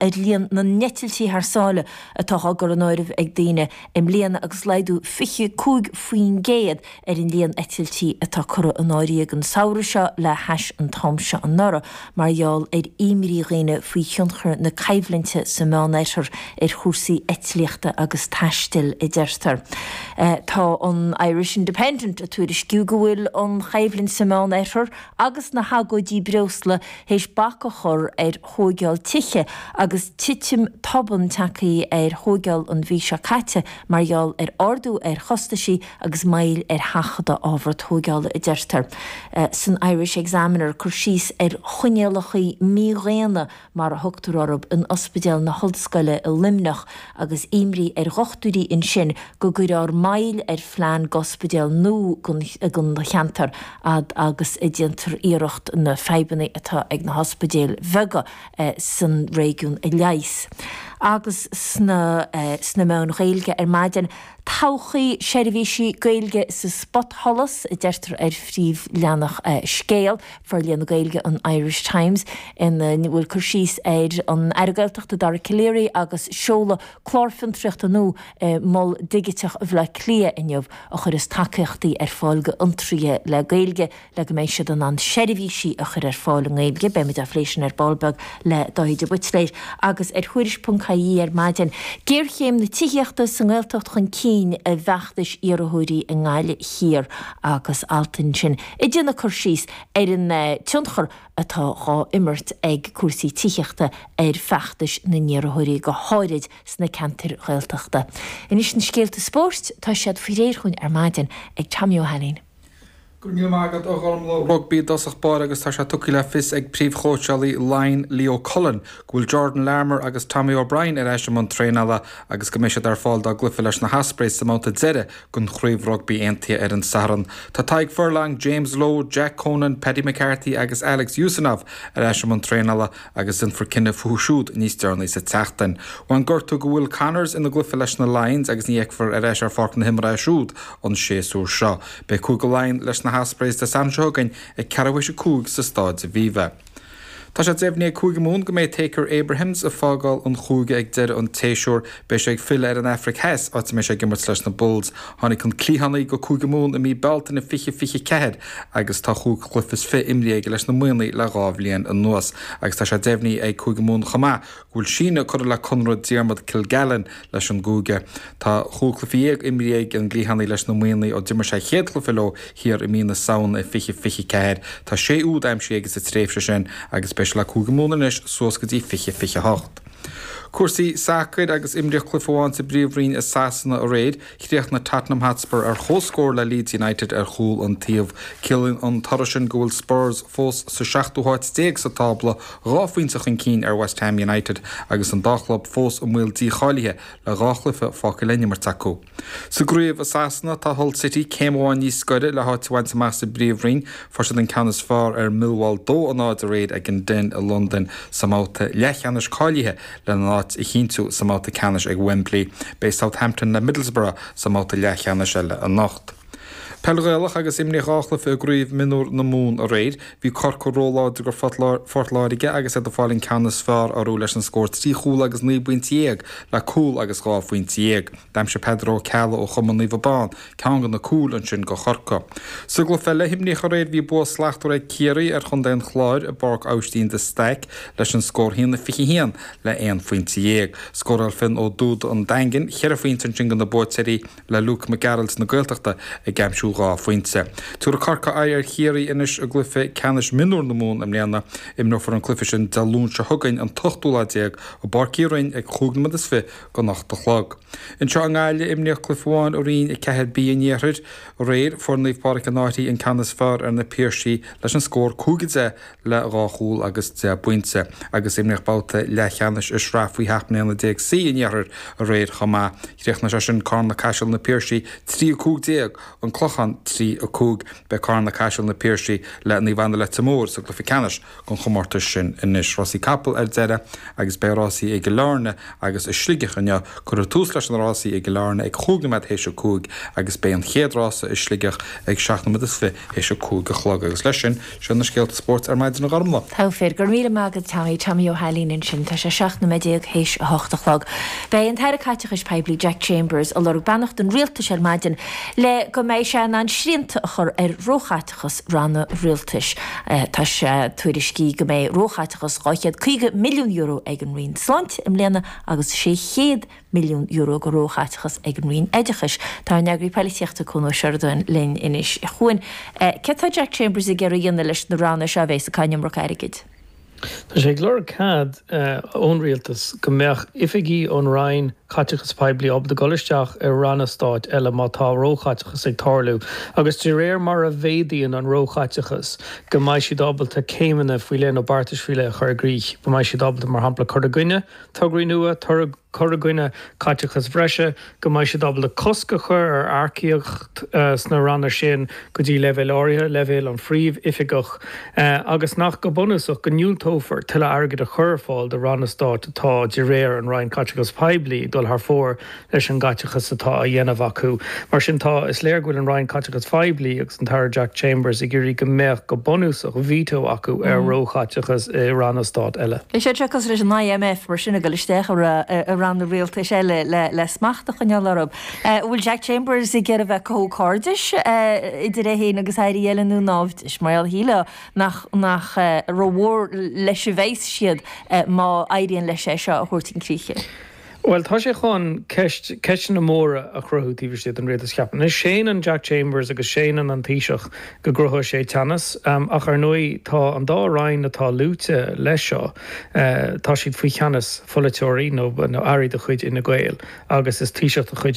ar líon na n-eitiltí thar sáile atá á gcur in áirithe ag daoine i mbliana agus laghdú 25% ar líon na n-eitiltí atá curtha in áirithe an samhradh seo le hais an t-am seo anuraidh mar gheall ar imní dhaoine faoi thionchar na coimhlinte sa Mheánoirthear ar chúrsaí eitlíochta agus taistil, a deirtear. Tá an Irish Independent ag tuairisciú go bhfuil an choimhlint sa Mheánoirthear agus na hagóidí breosla théis bac a chur ar thóigeáil tithe agus titim tobann tagtha ar thóigeáil an mhí seo caite mar gheall ar ardú ar chostaisí agus moill ar sheachadadh ábhar tóigeála, a deirtear san Irish Examiner, cur síos ar choinníollachaí mídhaonna, mar a thugtar orthu, in Ospidéal na hOllscoile i Luimneach agus imní ar dhochtúirí ansin go gcuirfear moill ar phlean d'ospidéal nua don cheantar. fhad agus a dhéantar iarracht na fadhbanna atá ag na hospidéil bheaga san réigiún a leigheas. Agus sna meáin Ghaeilge ar maidin, 'Todhchaí seirbhísí Gaeilge sa spotsholas, a deirtear ar phríomhleathanach Scéal, forlíonadh Gaeilge an Irish Times, ina bhfuil cur síos ar an Aire Gaeltachta Dara Calleary agus seoladh clár fiontraíochta nua i Mol Digiteach Bhaile Átha Cliath inniu a chuirfeas tacaíochtaí ar fáil d'fhiontraithe le Gaeilge le go mbeidh siad in ann seirbhísí a chur ar fáil i nGaeilge. Beimid á phlé sin ar ball beag le Dáithí de Buitléir agus ar Thuairisc.ie ar maidin. Géarchéim na tithíochta sa nGaeltacht chun cinn i bhfeachtais iarrthóirí i nGaillimh Thiar agus alt ansin ag déanamh cur síos ar an tionchar atá dhá imirt ag cúrsaí tithíochta ar fheachtais na n-iarrthóirí, go háirid sna ceantair Ghaeltachta. Anois na scéalta spóirt, tá siad faoi réir dhúinn ar maidin ag Tommy Ó hAinnín. Go raibh míle maith agat, a Ghormlaí. Rugbaí i dtosach báire agus tá sé tugtha le fios ag príomhchóitseálaí Laighean Leo Cullen go bhfuil Jordan Larmour agus Tommy O'Brien ar ais i mbun traenála agus go mbeidh siad ar fáil dá gcluiche leis na hOspreys sa mbabhta deiridh don Chraobh Rugbaí Aontaithe ar an Satharn. Tá Tadhg Furlong, James Lowe, Jack Conan, Paddy McCarthy agus Alex Usanov ar ais i mbun traenála agus déanfar cinneadh fúthu siúd níos deireanaí sa tseachtain. Bhain gortú do Will Connors ina gcluiche leis na Lions agus ní fheicfear ar ais ar pháirc na himeartha é siúd an séasúr seo. Beidh Cúige Laighean leis na hOspreys Dé Sathairn seo chugainn ag ceathrú théis a cúig sa Stáid Aviva. Tá sé deimhnithe ag Cúige Mumhan go mbeidh Thaakir Abrahams ag fágáil an chúige ag deireadh an tséasúir. Beidh sé ag filleadh ar an Afraic Theas, áit a mbeidh sé ag imirt leis na Bulls. Tháinig an cliathánaí go Cúige Mumhan i mí Bealtaine 2024 agus tá chúig chluiche is fiche imrithe aige leis na Muimhnigh le dhá bhliain anuas agus tá sé deimhnithe ag Cúige Mumhan chomh maith go bhfuil síneadh curtha le conradh Diarmuid Kilgallon leis an gcúige. Tá chúig chluiche dhéag imrithe ag an gcliathánaí leis na Muimhnigh ó d'imir sé a chéad chluiche leo thiar i mí na Samhna i 2024. Tá sé úd aimsithe aige sa tréimhse sin agus beidh sé le Cúige Mumhan anois suas go dtí 2028. Cúrsaí sacair agus imríodh cluiche amháin sa bpríomhroinn i Sasana aréir. Chríochnaigh Tottenham Hotspur ar chomhscór le Leeds United ar chúl an taobh. Ciallaíonn an toradh sin go bhfuil Spurs fós sa seachtú háit déag sa tábla, dhá phointe chun cinn ar West Ham United agus an dá chlub fós i mbaol dícháilithe le dhá chluiche fágtha le n-imirt acu. Sa gcraobh i Sasana, tá Hull City céim amháin níos gaire le háit a bhaint amach sa bpríomhroinn. Fuair siad an ceann is fearr ar Millwall 2 a 0 aréir ag an Den i Londain sa mbabhta leathcheannais cáilithe. Lena n-áit a chinntiú sa mbabhta ceannais ag Wembley, beidh Southampton le Middlesbrough sa mbabhta leathcheannais eile anocht. Peil Ghaelach agus imríodh dhá chluiche i gCraobh Mionúr na Mumhan aréir. Bhí Corcaigh róláidir go Phort Láirge agus iad ag fáil an ceann is fearr orthu leis an scór trí chúl agus naoi bpointe dhéag le cúl agus dhá phointe dhéag. D'aimsigh Peadar Ó Ceallaigh ó chumann Naomh Abán ceann de na cúil ansin go Chorcaigh. Sa gcluiche eile a himríodh aréir bhí bua slachtmhar ag Ciarraí ar Chontae an Chláir i bPáirc Aibhistín de Staic leis an scór a haon fiche a haon le aon phointe dhéag. Scóráil Fionn Ó Dubhda an Daingin cheithre phointe ansin go na buaiteoirí le Lúc Mac Gearailt na Gaeltachta ag aimsiú dhá phointe. Tiúrfaidh Corcaigh aghaidh ar Chiarraí anois i gcluiche ceannais mionúr na Mumhan i mbliana. Imreofar an cluiche sin Dé Luain seo chugainn an t-ochtú lá déag i bPáirc Uí Rinn ag chúig nóiméad is fiche go n-ocht a chlog. Anseo i nGaillimh, imríodh cluiche amháin i Roinn 4B an Iarthair aréir. Fuair Naomh Pádraig an Fhairche an ceann is fearr ar Na Piarsaigh leis an scór 5 10 le dhá chúl agus deich bpointe, agus imríodh babhta leathcheannais i Sraith Faoi 17 mbliana C an Iarthair aréir chomh maith. Chríochnaigh sé sin Carna Caiseal Na Piarsaigh 3 15, An Clochán 3 5. Beidh Carna Caiseal Na Piarsaigh le Naomh Anna Leitir Móir sa gcluiche ceannais. an chomórtais sin anois. Rásaí capall ar deireadh agus beidh rásaí i gCill Airne agus i Sligeach inniu. Cuirfear tús leis na rásaí i gCill Airne ag chúig nóiméad théis a cúig agus beidh an chéad rása i Sligeach ag seacht nóiméad is fiche théis a cúig a chlog. Agus leis sin, seo na scéalta spóirt ar maidin a Ghormfhlaith. Go raibh míle maith agat Tommy, Tommy Ó hAilín ansin. Tá sé seacht nóiméad déag théis a hocht a chlog. Beidh an tAire Caiteachais Poiblí Jack Chambers ag lorg beannacht an Rialtais ar maidin le go mbeidh sé in ann srianta a chur ar róchaiteachas. chas ranna rialtais. Tá sé tuairiscithe go mbeidh róchaiteachas €250 milliún ag an Roinn Sláinte i mbliana agus €600 milliún go róchaiteachas ag an Roinn Oideachais. Tá ár n-eagraí polaitíochta Cuan Ó Seireadáin linn anois. A Chuain, céard atá Jack Chambers ag iarraidh a dhéanamh leis na ranna seo a bheas ag caitheamh an iomarca airgid? Tá sé ag lorg cead ón rialtas go mbeadh oifigigh ón Roinn Caiteachais Poiblí ábalta dul isteach i ranna stáit eile má tá róchaiteachas ag tarlú agus de réir mar a mhéadaíonn an róchaiteachas go mbeidh siad ábalta céimeanna faoi leith nó beartais faoi leith a chur i gcrích go mbeidh siad ábalta mar shampla cur i gcoinne tograí nua, cur i gcoinne caiteachais bhreise, go mbeidh siad ábalta cosc a chur ar earcaíocht sna ranna sin go dtí leibhéal áirithe, leibhéal an Phríomh-Oifigeach, agus nach, go bunúsach, go ndiúltófar tuilleadh airgid a chur ar fáil do ranna stáit atá, de réir an Roinn Caiteachais Poiblí, ag dul thar fóir leis an gcaiteachas atá á dhéanamh acu. Mar sin tá, is léir go bhfuil an Roinn Caiteachais Phoiblí agus an tAire Jack Chambers ag iarraidh go mbeadh, go bunúsach, veto acu ar róchaiteachas i ranna stáit eile. Is é atá cosúil leis an IMF, mar sin, ag dul isteach i ranna rialtais eile le smacht a choinneáil orthu. An bhfuil Jack Chambers ag iarraidh a bheith ag cothú cairdeas idir é féin agus airí eile nó naimhdeas? Mar gheall, shílfeá, nach rómhór leis a bheas siad má éiríonn leis é seo a thabhairt chun críche. Bhuel, tá sé chun ceist, ceisteanna móra a chruthú taobh istigh den rialtas, cheapfainn. Anois, séanann Jack Chambers agus séanann an Taoiseach go gcruthóidh sé teannas, ach ar ndóigh tá an dá roinn atá luaite leis seo, tá siad faoi cheannas pholaiteoirí nó airí de chuid Fhine Gael agus is Taoiseach de chuid